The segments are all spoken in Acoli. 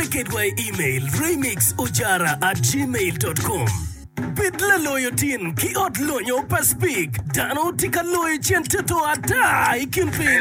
Wape kedwa i imel, remixojara at gmail dot com. Bed laloyo tin ki ot lonyo pa Speke. Dano tye ka loyo cen toto ata i kin piny.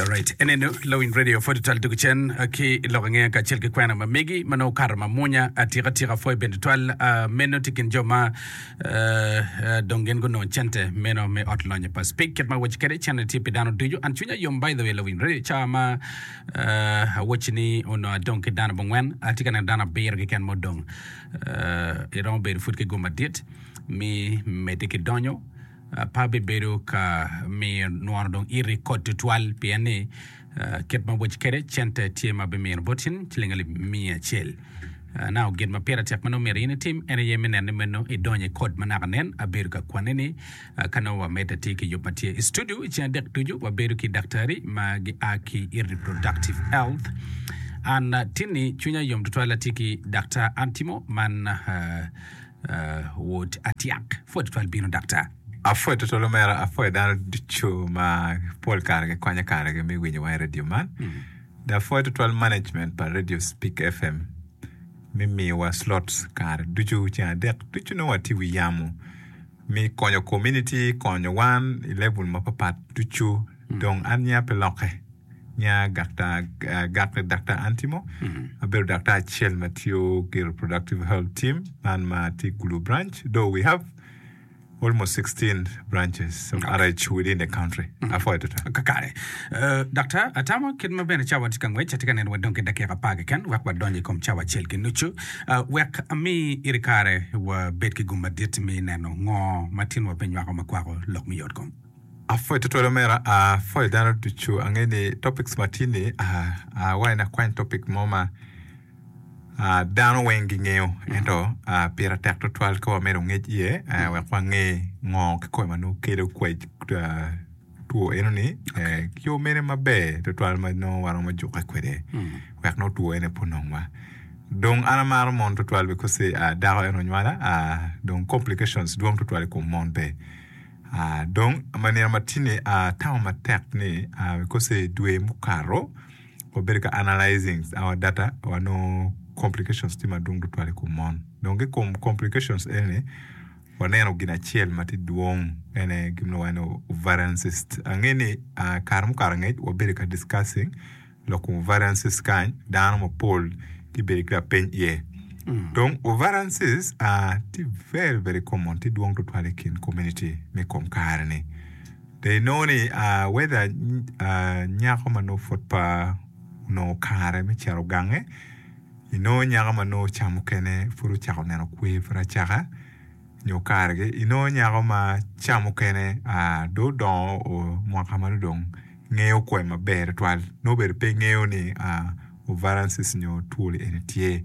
Alright, enenu lawiny radio pwod twal dog cen ah, ki lok angeya kacel ki kwena ma megi ma nongo okato ma munya atika tika pwoyo bene twal ah, meno tye kin jo ma eh, eh, dong gin gunongo cente meno me ot lonyo pa speak kit ma awoci kede cente tye pi dano ducu an cwinya yom by the way lawiny radio ca ma eh, awoci ni onongo adong ki dano bongwen atye ka neno dano abiro keken ma odong eh, iromo bedo pud ki gum madit mi medde ki donyo pa bibedo ka miyo nwono dong iti kot tutwal pien ni kit ma woci kwede cente tye ma bimino boti ni ciling alip miya acel. Naka gin ma pire tek ma nongo myero in itim en aye me neno ni me nongo idonyo i kot ma naka nen. Abedo ka kwanni ni ka nongo wamedde atir ki yub ma tye i studio i ceng adek ducu wabedo ki daktari ma gia ki i reproductive health. An tinni cwinya yom tutwal atye ki Daktar Antimo man Wod atyak, pwod twal bino daktar. Apwoyo twatwal omera, apwoyo dano ducu ma pol kare gikonyo kare gi me winyo wa i radio man. Dok apwoyo twatwal management pa radio Speak FM me miyowa slots kare ducu ceng adek ducu nongo watye i wi yamo me konyo community, konyo wan i level mapapat ducu. Dong an niya pe lokke. Nya Gakta Daktar Antimo, abedo daktar acel ma tiyo ki reproductive health team man ma tye Gulu branch. Though we have almost 16 branches of okay. RH within the country. Mm -hmm. Afoyo tuta. Kakare. Uh, daktar, atamo kit ma bene cawa tye ka ngwec, atye ka neno wadong ki dakika apar keken, wek wadonyo i kom cawa acel ki nucu. Uh, wek ami iri kare wabed ki gum madit mi neno ngo ma tinwa pe nywako ma kwako lok me yotkom. Apwoyo tutwal omera, apwoyo dano ducu. Angeyo ni topics ma tye ni, awayo ni akwany topic mo ma dano weng gingeyo ento pire tek tutwal ka wamedo ngec iye wek wange ngo kikome ma nongo kelo two enoni ki yo mene maber tutwal ma nongo waromo jukke kwede wek nongo two ene pe onong wa. Dong an amaro mon tutwal because dako en onywala dong complications dwong tutwal i kom mon be. Dong, ma nino matini atamo matek ni kose dwe mukato wabedo ka analyzing our data wanongo complications tye madwong tutwal i kom mon. Dong ki kom complications eni waneno gin acel ma tye dwong en aye gin ma lwongo ni ovarian cyst. Ange ni kare mukato angec wabedo ka discussing Lok wun variances kany dano mapol tye bedo ki lapeny iye. Dong variances tye very very common, tye dwong twatwal i kin community me kom kare ni. Dong inongo ni whether nyako ma nongo pud pe onongo kare me cito gange, inongo nyako ma nongo ocamo kene pud ocako neno kwer pud acaka, nyo kargi inongo nyako ma ca mukene dong odongo mwaka ma dong ngeyo kwee maber tutwal nongo bene pe ngeyo ni ovaransis nyo twol eni tye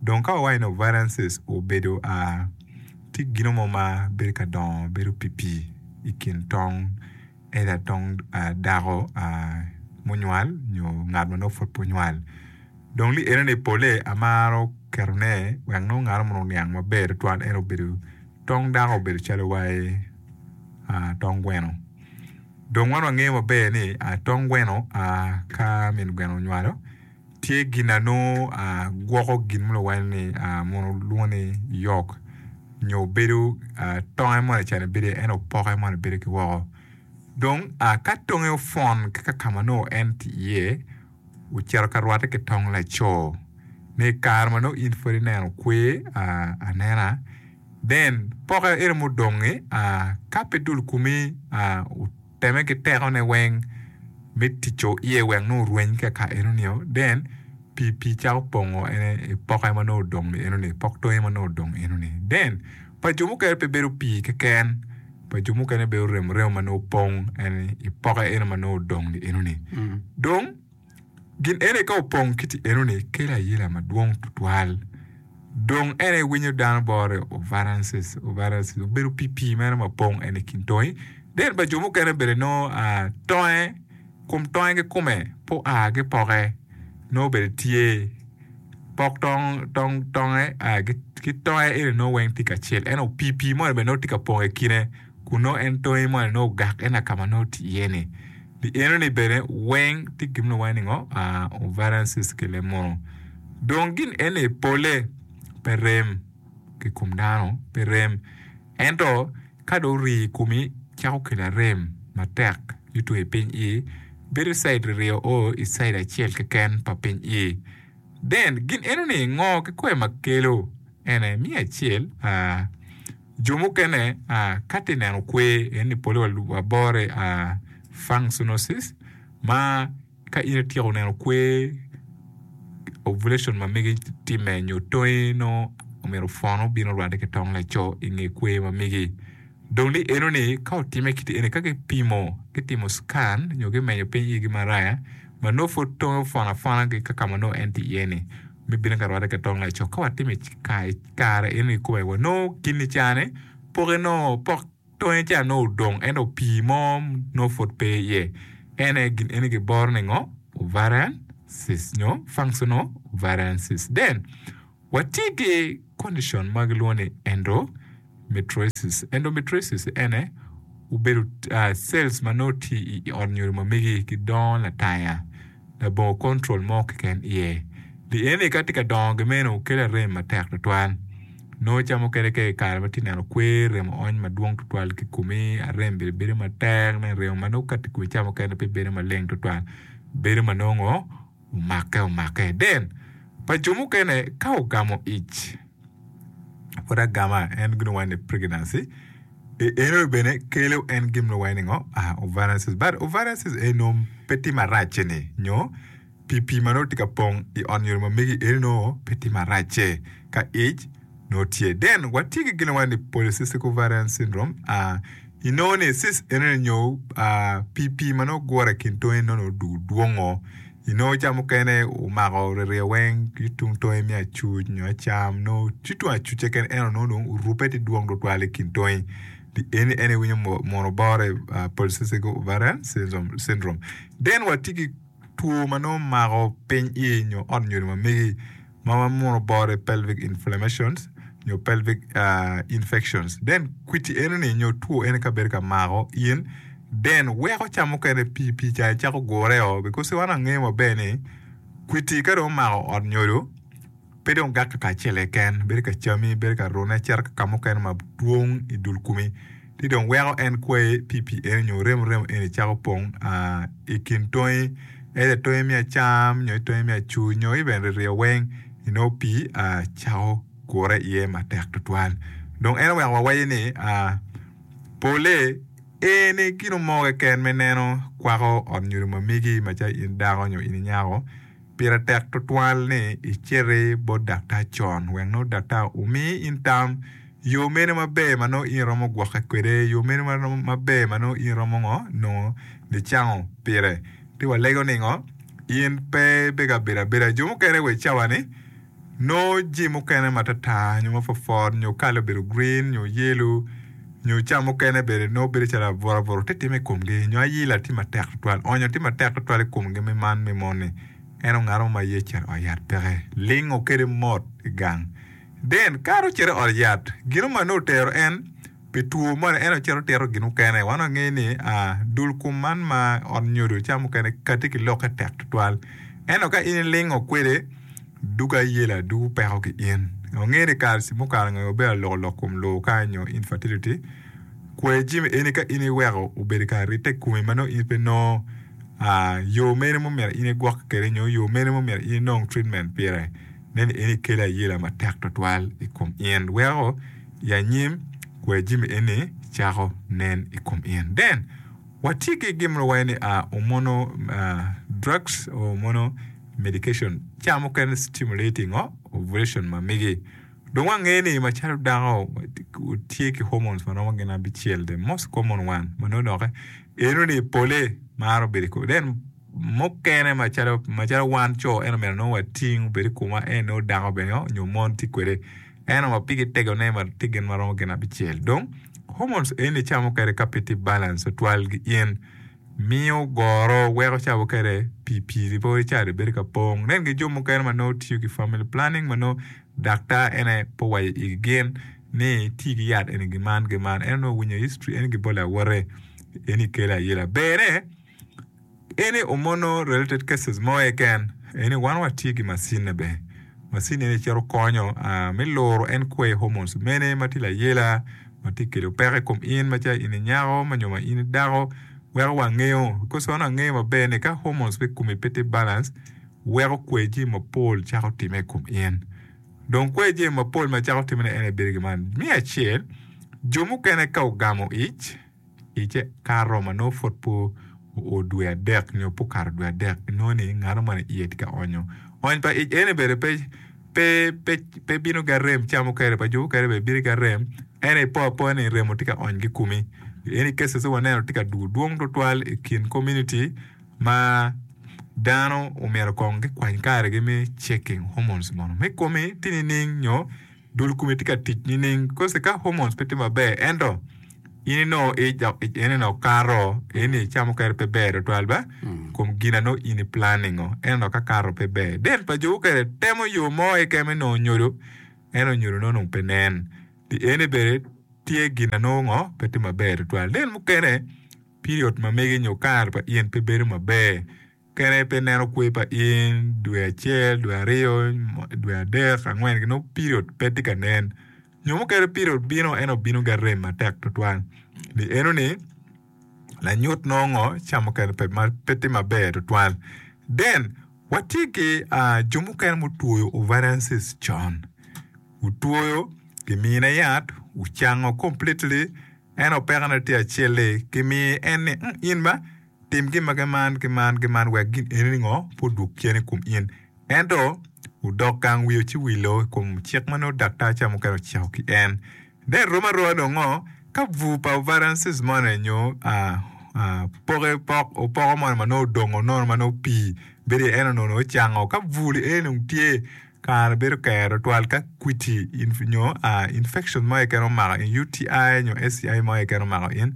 dong ka wawaco ni ovaransis obedo tye gino mo ma bedo ka dongo bedo pii pii i kin tong either tong dako munywal nyo ngat ma nongo pud pe onywal. Dong li eno ni pole amaro keto ne wek nongo ngato mono oniang maber tutwal en obedo tong dako obedo calo waye tong gweno dong wan wangeyo maber ni tong gweno ka min gweno onywalo tye gin ma nongo gwoko gin ma luwal ni mono lwongo ni yok nyo bedo tonge mo lacen bedo iye ento poke moni bedo ki woko dong ka tonge opwon ki kaka ma nongo en tye iye Ocito ka rwatte ki tong laco ni i kare ma nongo in pud ineno kwer anena then poke eno mudongi ka pe dul kumi oteme ki teko ne weng me tico iye wek nongo orweny ka ka eno nio then pi pi cako pongo ene poke ma nongo odong ni eno ni pok tonge ma nongo odong eno ni then pa jo mukene pe bedo pi keken pa jo mukene bene oremo remo ma nongo opong en i poke eno ma nongo odong ni enoni. Mm. Dong gin ene ka opong kiti enoni kelo ayela madwong tutwal. Dong en aye winyo dano bore ovarances ovarances obedo pipii meno ma pong en i kin tongi. Den pa jo mukene bene nongo ah, tonge Kom tonge kikome pe oaa gipoke nongo bene tye pok tong tong tonge ki tonge eni nongo weng tye kacel ento opii pii moni bene nongo tye ka pong ikine kun nongo en tonge moni nongo ogak ena ka ma nongo otye iye ni pi eno ni bene weng tye gin ma lwongo ni ngo ovarian cyst ki leb munu dong gin eni pole pe rem ki kom dano pe rem Ento ka dong rii i komi cako kelo arem matek yuto i piny ii, bedo i caid ririyo o i caid acel keken pa piny ii. Den, gin enoni ngo ki kwer ma kelo? Ene, miyo acel, aa, jo mukene, aa, ka ti neno kwer enoni pole wa lub wa bore, aa, functionosis, ma. Ka in ityeko neno kwer, ovulation, ma megi timme nyo tongi nongo omyero pwono bino rwadde ki tong laco i nge kwer ma megi. Dong ni enoni ka otimme kit eni ka gipimo, gitimo scan nyo gimenyo piny igi maraya ma nongo pwod tonge opwono apwona ki kaka ma nongo en tye iye-ni me bino ka rwadde ki tong laco. Ka watimo i kare enoni kome wanongo kini cane poke nongo pok. Tonge ca nongo odong ento pii mo nongo pud pe iye. En aye gin eni kiboro ni ngo? Ovarian cyst nyo functional ovarian cyst. Then, watye ki condition ma gilwongo ni endometriosis. Endometriosis ene obedo cells ma nongo tye i ot nyodo ma megi gidongo lataya. labongo control mo keken iye. Lieni ka tye ka dongo gi meno kela rem matek twatwal. Nongo ca mukene ka ikare ma tye neno kwer remo ony madwong twatwal ki komi a rem bene bedo matek nen remo ma nongo ka tye kome ca mukene pe bedo maleng twatwal bedo ma nongo omake omake. Then pa jo mukene ka ogamo ic. Pud agama en gin wai ni pregnancy eno bene kelo en gin wai ni ngo ah ovarian cyst but ovarian cyst eno pe tye maracce ni nyo pi pi manongo tye ka pong i on nyodo mamegi eno nongo pe tye maracce ka ic nongo tye then watye ki gin wai ni polycystic ovarian syndrome ah I nongo ni sis enoni nyo pii pii ma nongo gure ikin tonge ni nongo odwongo i nongo ca mukene omako ryeyo weng ki tung tonge me acuc nyo acam nongo ci tung acucce keken ento nongo dong orube ci dwong tutwal i kin tonge pii eni en aye iwinyo mono bore polycystic ovarian syndrome then watye ki Two ma nongo mako piny iye nyo ot nyodo ma megi ma wamuno boro i pelvic inflammations nyo pelvic infections. Then kwiti eno ni nyo two eno ka bedo ka mako in then weko ca mukene pi pi ca icako gure o because wan wangeyo maber ni kwiti ka dong omako ot nyodo Pe dong gakki pa acel keken, bedo ka cami, bedo ka rune, cito ki ka mukene ma dwong i dul kumi, ci dong weko en kwayi pi pii eni nyo remo remo eni cako pong i kin tongi, either tongi me acam nyo i tongi me acu nyo even ririyo weng, inongo pii cako gure iye matek tutwal. Dong en oweko wawaci ni pole eni gino mo keken me neno kwako ot nyo rumamegi macalo in dako nyo in inyako. Pire tek tutwal ni iciti bot daktar con wek nongo daktar omi in tam yo mene maber ma nongo in iromo gwokke kwede, yo mene maber ma nongo in iromo ngo, nongo nicango pire. Ci walego ningo? In pe ibed ka bedo abeda. Jo mukene wa i cawa ni. Nongo jim mukene matartar nyo mapwopwot nyo kale obedo green nyo yellow nyo cam mukene bene nongo bedo calo abutuabutu tye timme i komgi nyo ayila tye matek tutwal onyo tye matek tutwal i komgi me man me moni en ongato mo ma ye cito i ot yat peke lingo kede mot i gang den kare ocito i ot yat gino ma nongo otero en Pi two moni en ocito tito gin mukene. Wan wangeyo ni dul kom man ma ot nyodo ca mukene kati ki lokke tek tutwal. Ento ka in ilingo kwede, dug ayela, dug opeko ki in. Wangeyo ni KRC mukalo ngeyo maber aloko lok kom lowo ka nyo infertility. Kwer jami eni ka in iweko obedo i kare rite komi ma nongo in pe inongo yo mene ma myero in igwokke kwede nyo yo mene ma myero in inong treatment pire. Neni eni kelo ayela matek tutwal i kom in weko I anyim, kwer jami eni cako nen i kom in. Then, watye ki gin ma wawaco ni hormonal drugs or hormonal medication. Cawa mukene stimulating o ovulation ma megi. Dong wangeyo ni macalo dako tye ki hormones ma romo gin abicel, the most common one ma nongo doki eno ni pole maro bedo i kom. Then, mukene macalo wan co ento myero nongo wating obed i komwa en nongo dako bene nyo mon tye kwede. eno wa pigi tegone ma tye gin ma romo gin abicel. Dong, hormones eni camo kede ka pe tye balance tutwal gi in, miyo goro, weko cabo kede pi piri pe wai cari bedo ka pong. Nen gi jo mukene ma nongo tiyo ki family planning ma nongo daktar en aye pe owaco igi gin ni ti ki yat eni gi man gi man eno nongo winyo history eni gibole awote eni kele ayela. Bere. Eni omono related cases mo eken eni wan watye ki macine be macine eni cito konyo me luro en kwee hormones mene matye layela matye kelo peko i kom in macalo in inyako nyo ma in idako weko wangeyo because wan wangeyo maber ni ka hormones me komi pe tye balance weko kwee jami mapol cako time i kom in dong kwee jami mapol macako time ne en aye bedo gin man me acel jo mukene ka ogamo ic. I kare romo ma nongo pud pe oo dwe adek nyo pe okato dwe adek, inongo ni ngano moni iye tye ka onyo. Ony pa ic eni bene pe bino ki arem cam mukene pa jo mukene bene bino ki arem, ento ipo apoya ni remo tye ka ony ki i komi. Eni cases ma waneno tye ka dwogo dwong tutwal i kin community ma dano omyero kong gikwany karegi me checking hormones mono me komi tye nining nyo. dul komi tye ka tic nining because ka hormones pe tye maber ento in inongo ene ni okato ene ni ica mukene pe ber tutwal ba kom gin anongo in i planning o ene ni ka kato pe ber then pa jo mukene temo yo mo keken me nongo nyodo ento nyodo ne onongo pe nen pi ene bene tye gin anongo ngo pe tye maber tutwal then mukene period ma mege nyo kare pa in pe bedo maber Kene pe neno kwe pa in, dwe acel, dwe aryo, dwe adek, angwen ki nongo period pe tye ka nen. Nyo mukene period bino ento obino ki arem matek tutwal. Pi eno ni lanyut nongo ngo ca mukene pe ma pe tye maber tutwal. Then watye ki jo mukene mutwoyo ovarian cyst con. Wutwoyo kimine yat, wucango completely ento pekone tye acel-li kimiyo en ni in ba Tim gin ma giman ki man ki man wek gin enini ngo pe odwog cen i kom in. Ento, odok gang wiyo ci wilo i kom cik ma nongo daktar ca mukene ociko ki en. Dong irom aroa dong ngo ka bur pa variances moni nyo poke pok opoko moni ma nongo odongo nono ma nongo pii bedo iye eno nono ocango? Ka bur li eni dong tye, kare bedo ker tutwal ka kwiti nyo infection mo keken omako in, UTI nyo STI mo keken omako in,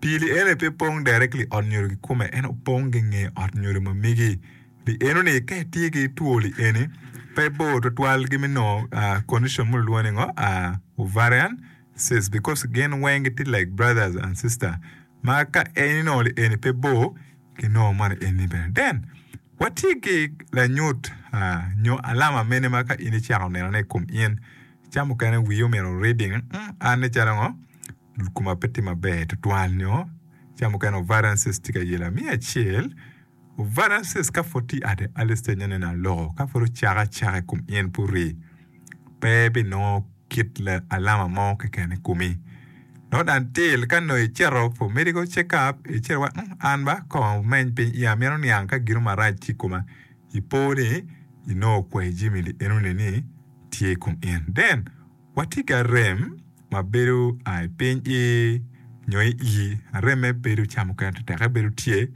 Pi lienoni pe pong directly ot nyodo kikome ento pong ki nge ot nyodo ma migi. Lienoni ka itye ki two lieni pe bor twatwal ki me nongo condition mo lulwongo ni ngo ovarian cyst because gin weng gitye like brothers and sister ma ka en inongo lieni pe bor ki nongo moni eni bene. Then watye ki lanyut nyo alama mene ma ka in icako nenone i kom in cam mukene wii omyero reading an nen calo ngo. koma pe tye maber tutwal nyo ca mukene ovarensis tye ka yela. Me acel, ovarensis ka pud tye ati early stage nongo nene aloko ka pud ocako acaka i kom in pe ori pe binongo kit alama mo keken i komi nongo dong til ka nongo icito for medical check up icito wa ung an ba kong ameny piny iya mito niang ka gin marac tye i koma ipo ni inongo okwayo jami lienoni ni tye i kom in then Watye ki arem ma bedo aa i piny i nyo i ii. Arem-me bedo ca mukene tetekke bedo tye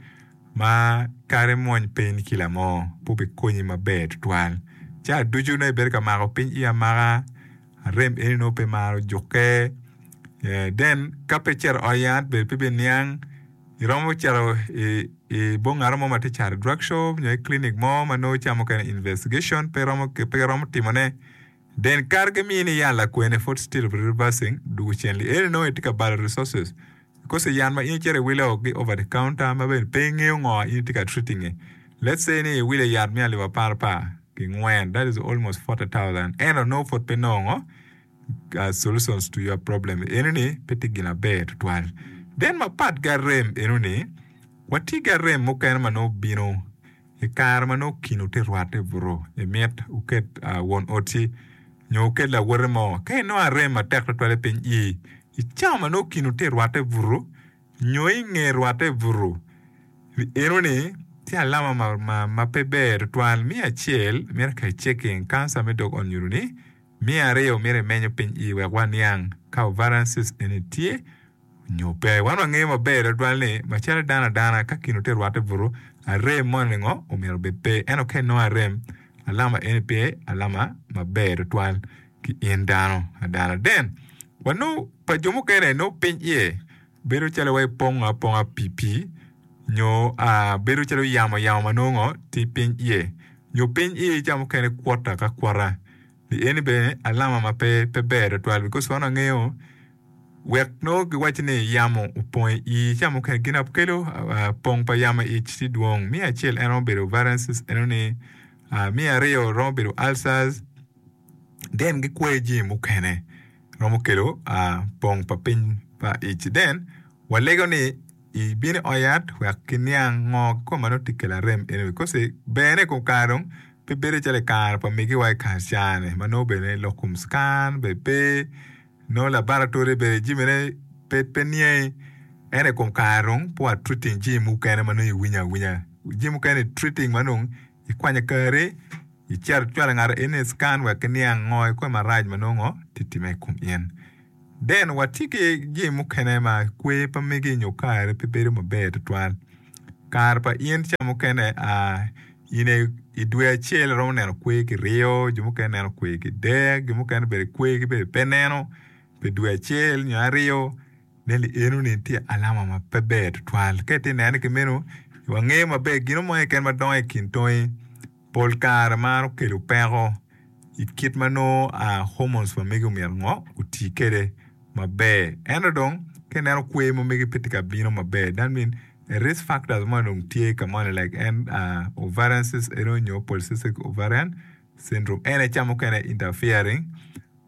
ma kara imwony piny kila mo pe obikonyi maber tutwal. Ca ducu nongo ibedo ka mako piny ii amaka, arem eni nongo pe maro jukke. Then ka pe icito i ot yat bene pe ibiniang. Iromo cito i bongaro mo ma tye cato drug shop nyo i clinic mo ma nongo ca mukene investigation pe iromo timone. Then kare ki mini yan lakwene pud still reversing dugu cen li eni nongo itye ka balo resources because i yan ma in icito iwilo gi over the counter ma bene pe ingeyo ngo in itye ka treating i let's say ni iwile yat me alip apar apar ki ngwen that is almost forty thousand ento nongo pud pe nongo solutions to your problem eno ni pe tye gin maber tutwal then mapat ki arem eno ni watye ki arem mukene ma nongo bino I kare ma nongo kino tye rwatte buto, imit wuket won oti nyo wuket lawote mo. Ka inongo arem matek twatwal i piny ii, i cawa ma nongo kino tye rwatte buto nyo i nge rwatte buto, enoni tye alama ma pe ber twatwal. Me acel, miti ka iceking kanca me dog onyuto-ni. Me aryo, miti imenyo piny ii wek waniang ka ovarian cyst eni tye. nyo pe. Wan wangeyo maber tutwal ni, macalo dano adana, ka gin ote rwatte butu, arem moni ningo omyero obed pe. Ento ka inongo arem, alama eni pe alama maber tutwal ki in dano adana. Then, wanongo pa jo mukene nongo piny iye bedo calo waci pongo aponga pi pi, nyo bedo calo yamo yamo ma nongo ngo, tye piny iye. Nyo piny iye ca mukene kwota ka kwota. Pi eni bene alama ma pe ber tutwal because wan wangeyo Wek nongo giwacci ni yamo opong i ii, ca mukene gin apkelo pong pa yamo i ic tye dwong. Me acel en romo bedo variances eno ni, me aryo romo bedo ulcers, then gikwayo jami mukene romo kelo pong pa piny pa ic. Then walego ni ibino i ot yat wek giniang ngo kikome ma nongo tye kelo arem eno ni because bene i kom kare dong pe bedo calo i kare pa migiwa i kare cani ma nongo bene lok kom cikan bene pe. Nongo labaratori bene jimine pe niangi ento i kom kare dong pe watreating jim mukene ma nongo iwinyo awinya. Jim mukene itreating ma dong ikwanyo kari icito icwalo ngat eni i cikan wek iniang ngo ikome marac ma nongo tye ka timme i kom in. Then watye ki jim mukene ma kwer pe mege nyo kare pe bedo maber tutwal. Kare pa in ca mukene in i dwe acel iromo neno kwer kiryo jo mukene neno kwer kidek jo mukene bene kwer kibedo pe neno pi dwe acel nyo aryo ne ni eno ni tye alama ma pe ber tutwal ka itye nene ki meno wangeyo maber gino mo keken ma dongo i kin tongi. Pol kare maro kelo peko i kit ma nongo hormones pa mege omyero ngo oti kwede maber. Ento dong ka ineno kwer ma mege pe tye ka bino maber that mean risk factors moni dong tye ka moni like en ovarian cyst ene onyo polycystic ovarian syndrome en aye ca mukene interfering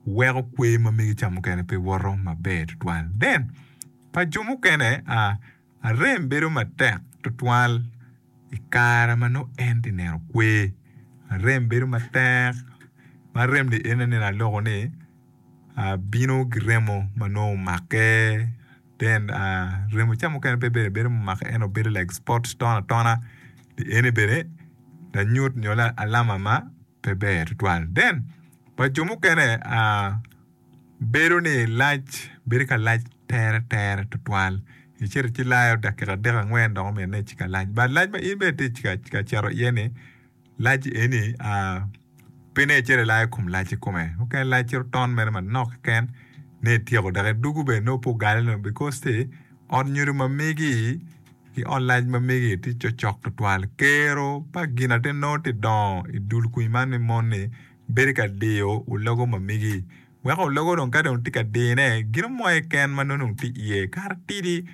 weko kwer ma mege ca mukene pe woto maber tutwal. Then pa jo mukene. Arem bedo matek twatwal i kare ma nongo en tye ka neno kwer. Arem bedo matek ma arem-mi en aneno aloko ni bino ki remo ma nongo omake then remo ca mukene pe bene bedo mumake ento bedo like spots atona atona eni bene lanyut nyo alama ma. pe ber tutwal. Then pa jo mukene bedo ni lac bedo ka lac tere tere tutwal icito ci layo dakika adek angwen dok omyero ine ci ka lac but lac ma in bene itye ka cito iye ni lac eni pe ine icito ilayo kom lac i kome mukene lac cito ton mere manok keken ni ityeko dok idwogo bene nongo pe ogale nongo because te ot nyodo ma migi I online ma mege tye cocok tutwal. Kero pa gin ate nongo tye dongo i dul kwi man ni mon ni bedo ka diyo ologo ma mege. Weko ologo dong ka dong tye ka dine gino mo aye ken ma nongo dong tye iye kara tidi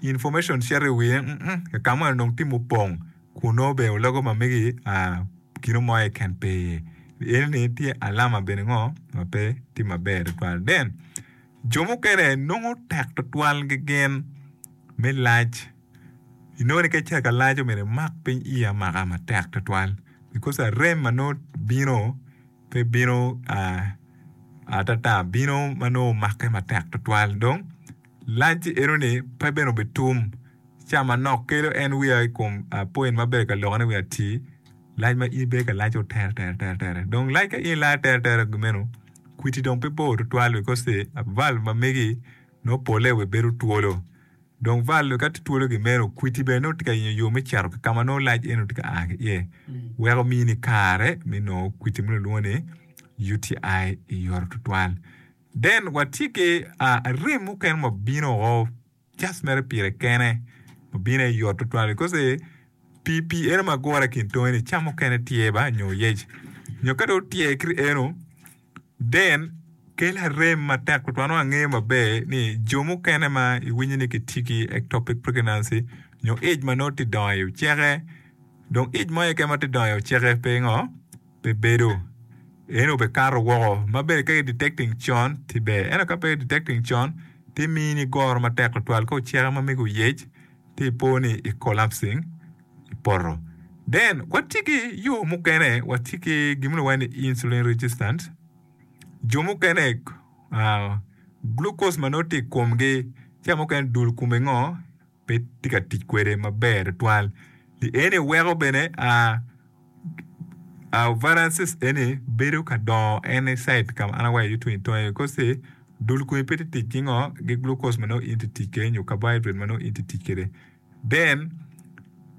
information cito i wiye mm kaka moni dong tye mupong kun nongo bene ologo ma mege aa gino mo aye ken pe iye. Eni ni tye alama bene ngo ma pe tye maber tutwal then. Jo mukene nongo tek tutwal gegen me lac. Inongo ni ka icito ka lac omyero imak piny iyi amaka matek tutwal bikos arem ma nongo bino pe bino atata bino ma nongo omake matek tutwal dong lac enoni pe bene obitum. Ca manok kelo en wiya i kom point ma abedo ka lokkone wiya atir. Lac ma in ibedo ka laco teretere, dong lac ka in ilayo teretere meno, kwidi dong pe bor tutwal bikos-si valve ma megi nongo polle wa bedo twolo. Dong valve ka tye twolo gin meno, kwidi bene nongo tye ka yenyo yo me cito ki ka ma nongo lac eno tye ka a ki iye, weko omini kare me nongo kwidi ma kilwongo ni UTI i yot tutwal. Then watye ki rem mukene ma bino woko. Just mere pire kene obino aye yot tutwal because pi pi eno ma gure kin tonge ni cam mukene tye ba nyo oyec nyo ka dong otyer ki eno then kelo arem matek tutwal nongo angeyo maber ni jo mukene ma iwinyo ni gitye ki ectopic pregnancy nyo ic ma nongo tye dongo i oceke dong ic mo keken ma tye dongo i oceke pe ngo pe bedo. En obekato woko ma bene ka i-detecting con ti ber. Ento ka pe i-detecting con, ti mii ni goro matek tutwal ka oceke ma mege oyec ti ipo ni i-collapsing i poto. Then, watye ki yo mukene, watye ki gin ma lwonge ni insulin resistant. Jo mukene, ah, glucose ma nongo tye i komgi, ca mukene dul kome ngo, pe tye ka tic kwede maber tutwal ni eni weko bene a viruses eni bedo ka dongo any side ka ma an awaco iye tung itonge because ni dul kome pe tye tic ki ngo ki glucose ma nongo in itye tic kwede nyo carbohydrate ma nongo in itye tic kwede then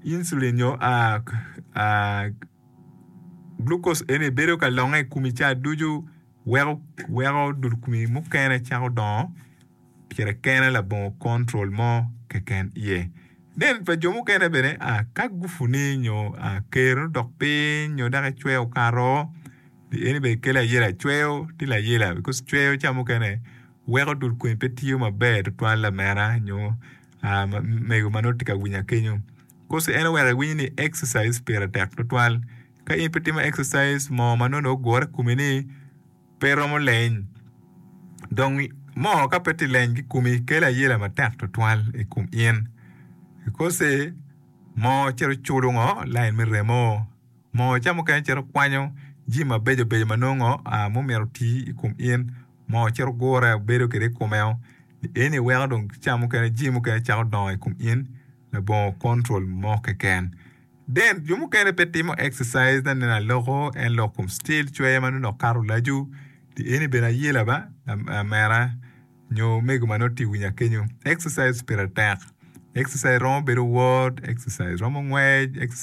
insulin nyo glucose eni bedo ka longe i komi ca ducu weko dul komi mukene cako dongo. pire kene labongo control mo keken iye. Then pa jo mukene bene a ka gufu ni nyo a ker odok piny nyo dok ecweyo okato the eni bene kelo ayela cweyo tye layela because cweyo ca mukene weko dul kwen pe tiyo maber tutwal lamera nyo a mego ma nongo tye ka winya kenyo coz en oweko iwiny ni exercise pire tek tutwal ka in pe itimo exercise moo ma nongo ogure i komi ni Pe iromo leny. Dong mo ka pe ti leny ki kumi kelo ayela matek twatwal i kum in. Ikoce mo cito culo ngo lain me remo. Mo ca mukene cito kwanyo jimi mabeco beco ma nongo a mumito oti i kum in. Mo cito gure bedo kede i kume o. Eni weko dong ca mukene jimi mukene cako dongo i kum in labongo control mo keken. Dent, Jo mukene pe timo exercise na nen aloko en lok kom still cwer ma nonok kato laco di eni bene aye laba lamera nyo omego ma nongo tye winya kenyo exercise pire tek exercise romo bedo word exercise romo ngwec exercise